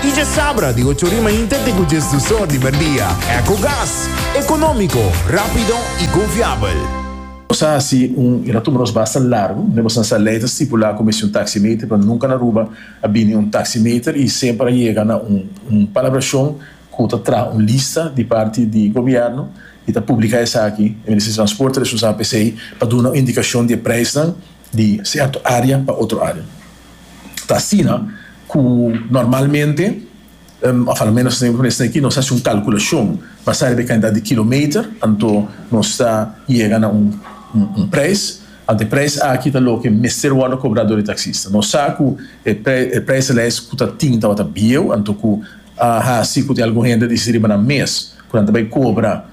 Y dje sabra di ocho ori mainta te cu djes dus or di merdia. Ecogas. Economico, rapido y confiabel. Nos a haci un y na tuma nos basta largo. Mebos na sa ley ta stipula cu mester un taximeter, pero nunca na Aruba a bini un taximeter y semper a yega na un un palabracion cu ta traha un lista di parti di gobierno y ta publica esaki. E Ministerio di Transporte a responsabel pa esey pa duna un indicacion di e prijsnan. di sierto area pa otro area ta asina cu normalmente of a lo menos esaki cu esaki nos haci un calculacion basa riba e cantidad di kilometer anto nos ta yega na un un prijs anto e prijs aki ta loke mester wordo cobra door e taxista nos sa cu e e prijslijst cu ta tin tabata bieuw anto cu a haci cu tin algun hende dici riba nan mes cu nan ta bay cobra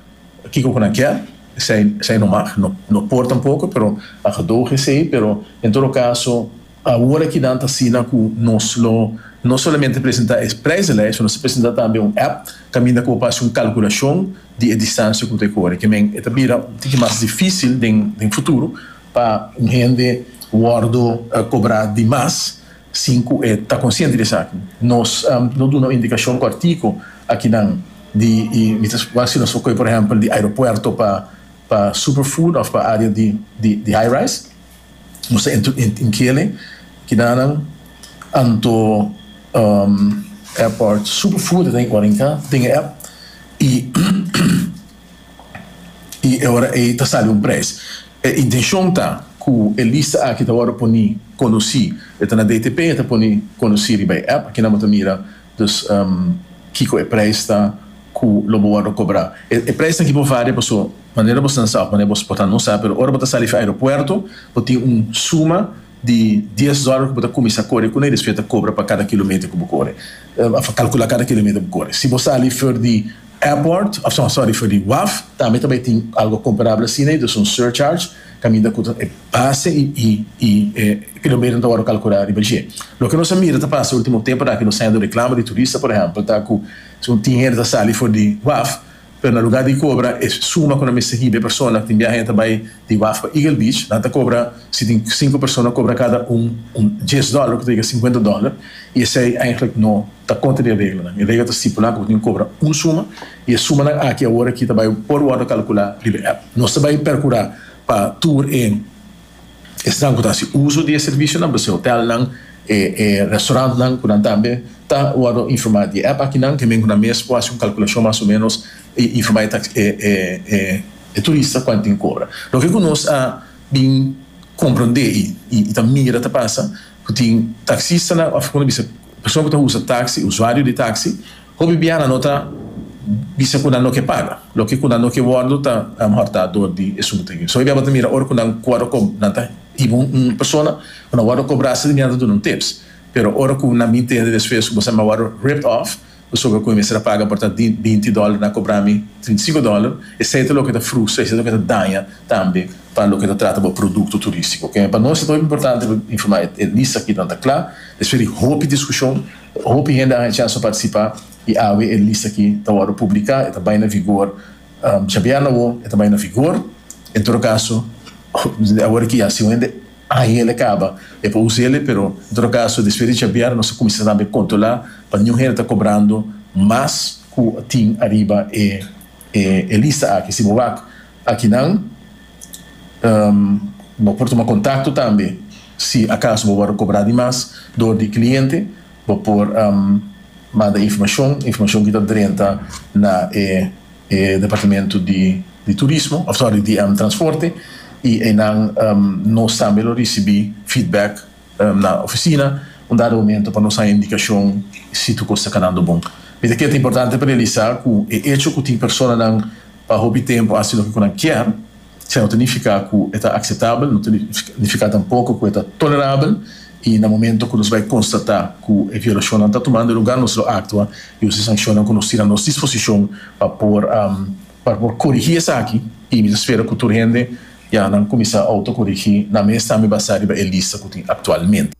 kico cu nan kier Esei esei nomag. No no por tampoco, pero a gedoge esei. Pero en todo caso awor aki nan ta asina cu nos lo no solamente presenta e prijzenlijst, nos a presenta tambe un app caminda cu bo por haci un calculacion di e distancia cu ta e core. Ke men e ta bira un tiki mas dificil den den futuro pa un hende wordo cobra di mas Sin cu e ta consciente di esaki, nos lo duna un indicacion cortico akinan di y mi ta wasi nos lo coge por ehempel di aeropuerto pa pa Superfood of pa area di di di High Rise nos ta entro in kele kidanan anto Airport Superfood ta den ora in ka den e app y. i e ora ei ta sali un prijs. E intencion ta cu e lista aki ta wordo poni conoci, e ta na DTP e ta poni conoci riba e app, aki nan bo ta mira dus kico e prijs ta cu lo bo wordo cobra. E prijsnan aki por varia paso manera bo stansa of manera bo por ta no sa, pero ora bo ta sali fi aeropuerto bo tin un suma di dies dollar cu bo ta cuminsa core cunai despues e ta cobra pa cada kilometer cu bo core of calcula cada kilometer cu bo core. Si bo sali for di. Airport, sorry for di waf, tambe ta bay tin algo comparable asina y dus un surcharge caminda cu e base y e kilometer ta worde calcula riba dje. Loke nos a mira ta pasa ultimo temponan aki nos ta hende reclamo di turista por ehempel ta cu tin hende ta sali for di waf pero na lugar di cobra e suma cu nan mester hiba e persona tin biaha e ta bay Di waf pa Eagle Beach nan ta cobra, si tin cinco persona cobra cada un un dies dollar cu ta yega cincuenta dollar y esey eigenlijk no ta contra di e reglanan. E regla ta stipula cu bo tin cu cobra un suma y e sumanan aki awor aki ta bay por wordo calcula riba e app. Nos ta bay percura pa tur e esnan cu ta haci uzo di e servicionan, por ese hotelnan, e e restaurantnan cu nan tambe ta wordo informa di e app akinan, hemen cu nan mes por haci un calculacion mas o menos y informa e tax e e e. E turista ku a tin kobra. Loke ku nos a bin komprondé i ta mira ta pasa, ku tin taksistanan òf ku no bisa persona ku ta usa taksi, usuario di taksi, hopi biaha nan no ta bisa ku nan no ke paga. Loke ku nan no ke wòrdu ta alomehor ta dor di e sungu ta gin. Esei biaha bo ta mira ora ku nan wòrdu ko, nan ta hiba un persona ku nan wòrdu kobrá, asina biaha nan ta duna un tips. Pero ora ku nan bin tende despues ku bo sa nan wòrdu ripped off, Pasobra cu e mester a paga por ta binti dollar na cobra mi trinta y cinco dollar, esey ta loke ta frustra, esey ta loke ta daña tambe pa loke ta trata bo producto turistico. Ok, pa nos e ta hopi importante pa informa e lista aki nan ta cla, despues di hopi discusion, hopi hende a haña chans pa participa y awe e lista aki ta wordo publica, e ta bay na vigor djabièrna awo, e ta bay na vigor, en todo caso, awor aki ya si un hende. Ahiel e caba, e por usa ele, pero en todo caso despues di chavear nos a cuminsa tambe controla pa niun hende ta cobrando mas cu tin ariba e lista aki. Si bo wak akinan bo por tuma contacto tambe si acaso bo wordo cobra di mas door di e cliente bo por manda informacion, informacion ki ta drenta na e. e departamento di di turismo of sorry di transporte y eynan nos tambe lo ricibi feedback na oficina un dado momento pa nos haya indicacion si tur cos ta canando bon. Mira que ta importante pa realisa cu e hecho cu tin personanan pa hopi tempo haci loke cu nan kier, Esei no ta nifiká ku e ta akseptabel, no ta nifiká tampoko ku e ta tolerabel, i na momentu ku nos bai konstatá ku e violashonnan ta tumando lugá nos lo aktua i usa e sanshonnan ku nos tin a nos disposishon pa por pa por korigí esaki i mi ta spera ku tur hende ya nan kuminsá outokorigí nan mes tambe basá riba e lista ku tin aktualmente.